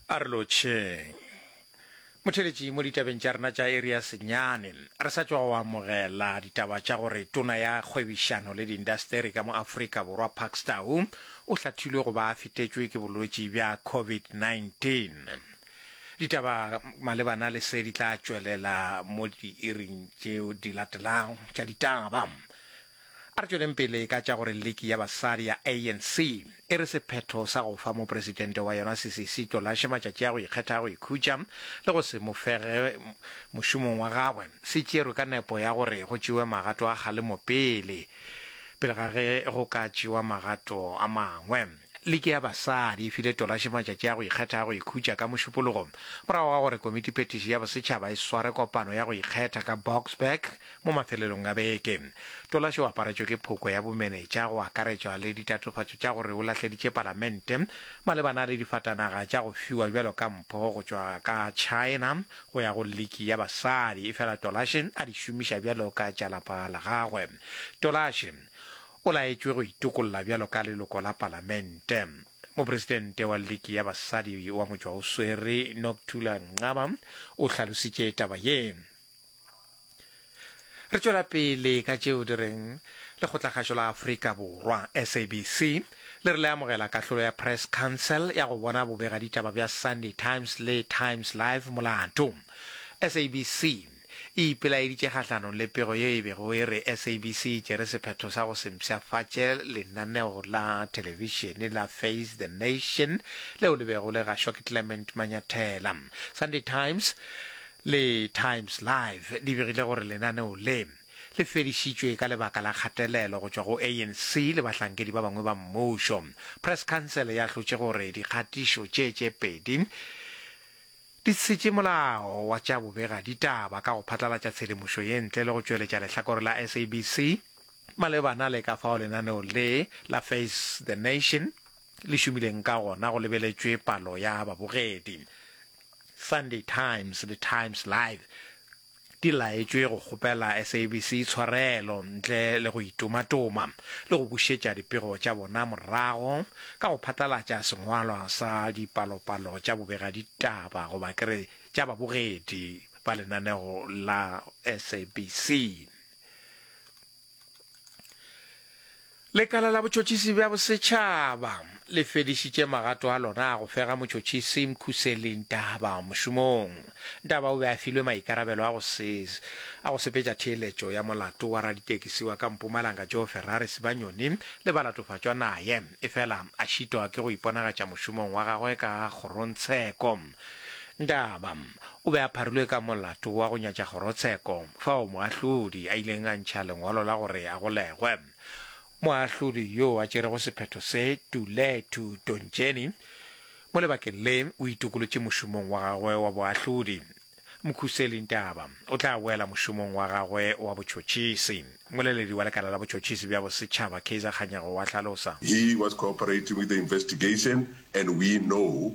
a re lotšheng motheletši mo ditabeng tša rena tša area senyane re sa tšwa go amogela ditaba tša gore tona ya kgwebišano le diindasteri ka mo aforika borwa park stow o hlathilwe go ba a fetetšwe ke bolwetši bja covid-19 ditaba malebana le se di tla tšwelela mo diiring tšeo di latelago tša ditaba A re tšweleng pele ka tša gore liki ya basadi ya ANC e re sephetho sa go fa mopresidente wa yona Sisisi Tlolashe matšatši a go ikgetha a go ikhutša le go se mo fege mošomong wa gagwe se tšerwe ka nepo ya gore go tšewe magato a kgalemo pele pele ga ge go ka tšewa magato a mangwe. Liki ya Basadi e file Tolashe matšatši a go ikgetha a go ikhutša ka Mošupologo morago ga gore Komitiphethiši ya Bosetšhaba e sware kopano ya go ikgetha ka Boksburg mo mafelelong a beke. Tolashe o aparetšwe ke phoko ya bomenetša go akaretšwa le ditatofatšo tša gore o lahleditše Palamente malebana le difatanaga tša go fiwa bjalo ka mpho go tšwa ka China go ya go Liki ya Basadi efela Tolashe a di šomiša bjalo ka tša lapa la gagwe. Tolashe O laetšwe go itokolla bjalo ka leloko la palamente. Mopresidente wa Liki ya Basadi wa Motšwaoswere, Nokuthula Nxaba, o hlalositše taba ye. Re tšwela pele ka tšeo di reng Lekgotlakgašo la Afrika Borwa, SABC, le re le amogela kahlolo ya Press Council ya go bona bobegaditaba bja Sunday Times le Times Live molato. SABC e ipelaeditše kgahlanong le pego ye e bego e re SABC e tšere sephetho sa go se mpshafatše lenaneo la thelebišene la Face the Nation leo le bego le gašwa ke Clement Manyathela. Sunday Times le Times Live di begile gore lenaneo le le fedišitšwe ka lebaka la kgatelelo go tšwa go ANC le bahlankedi ba bangwe ba mmušo. Press Council ya hlotše gore dikgatišo tše tše pedi Di šetše molao wa tša bobega ditaba ka go phatlalatša tshedimošo ye ntle le go tšweletša lehlakore la SABC malebana le ka fao lenaneo le la Face the Nation le šomileng ka gona go lebeletšwe palo ya babogedi. Sunday Times le Times Live di laetšwe go kgopela SABC tshwarelo ntle le go itumatuma le go bušetša dipego tša bona morago ka go phatlalatša sengwalwa sa dipalopalo tša bobegaditaba goba ke re tša babogedi ba lenaneo la SABC. Lekala la botšhotšhisi bja bosetšhaba le fedišitše magato a lona a go fega motšhotšhisi Mkhuseli Ntaba mošomong. Ntaba o be a filwe maikarabelo a go se a go sepetša theeletšo ya molato wa raditekisi wa ka Mpumalanga Joe Ferrari Sibanyoni le balatofatšwa naye efela a šitwa ke go iponagatša mošomong wa gagwe ka kgorongtsheko. Ndaba o be a pharilwe ka molato wa go nyatša kgorotsheko fao moahlodi a ileng a ntšha lengwalo la gore a golegwe. Moahlodi yo a tšerego sephetho se, Tulethu Tontšeni, mo lebakeng le o itokolotše mošomong wa gagwe wa boahlodi. Mkhuseli Ntaba o tla boela mošomong wa gagwe wa botšhotšhisi, moleledi wa lekala la botšhotšhisi bja bosetšhaba Kaizer Kganyago wa hlalosa. He was cooperating with the investigation and we know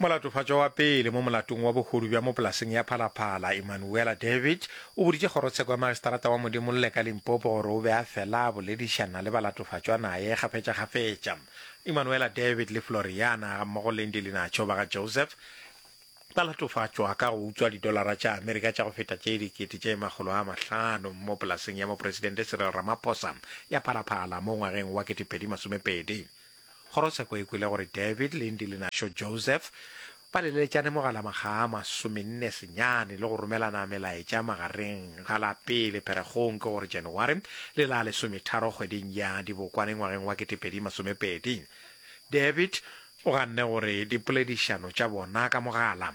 Molatofatšwa wa pele mo molatong wa bohodu bja mo polaseng ya Phalaphala, Emmanuella David, o boditše kgorotsheko ya magistrata wa Modimolle ka Limpopo gore o be a fela a boledišana le balatofatšwa naye kgafetšakgafetša. Emmanuella David le Floriana gammogo le Ndili Nacho ba ga Joseph ba latofatšwa ka go utswa didolara tša Amerika tša go feta tše dikete tše makgolo a mahlano mo polaseng ya Mopresidente Cyril Ramaphosa ya Phalaphala mo ngwageng wa 2020. Kgorotsheko e kwele gore David le Ndilinaxo Joseph ba leleletšane mogala makga a masomenne senyane le go romelana melaetša magareng ga la pele Pherekgong ke gore January le la lesometharo kgweding ya Dibokwane ngwageng wa ketepedi masomepedi. David o ganne gore dipoledišano tša bona ka mogala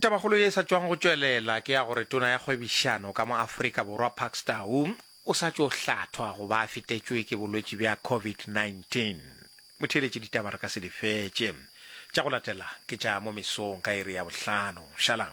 Tabakgolo ye e sa tšwago go tšwelela ke ya gore tona ya kgwebišano ka mo Afrika Borwa Parks Tau o sa tšo hlathwa go ba a fetetšwe ke bolwetši bja COVID-19. Motheeletši ditaba re ka se di fetše. Tša go latela ke tša mo mesong ka iri ya bohlano. Šalang.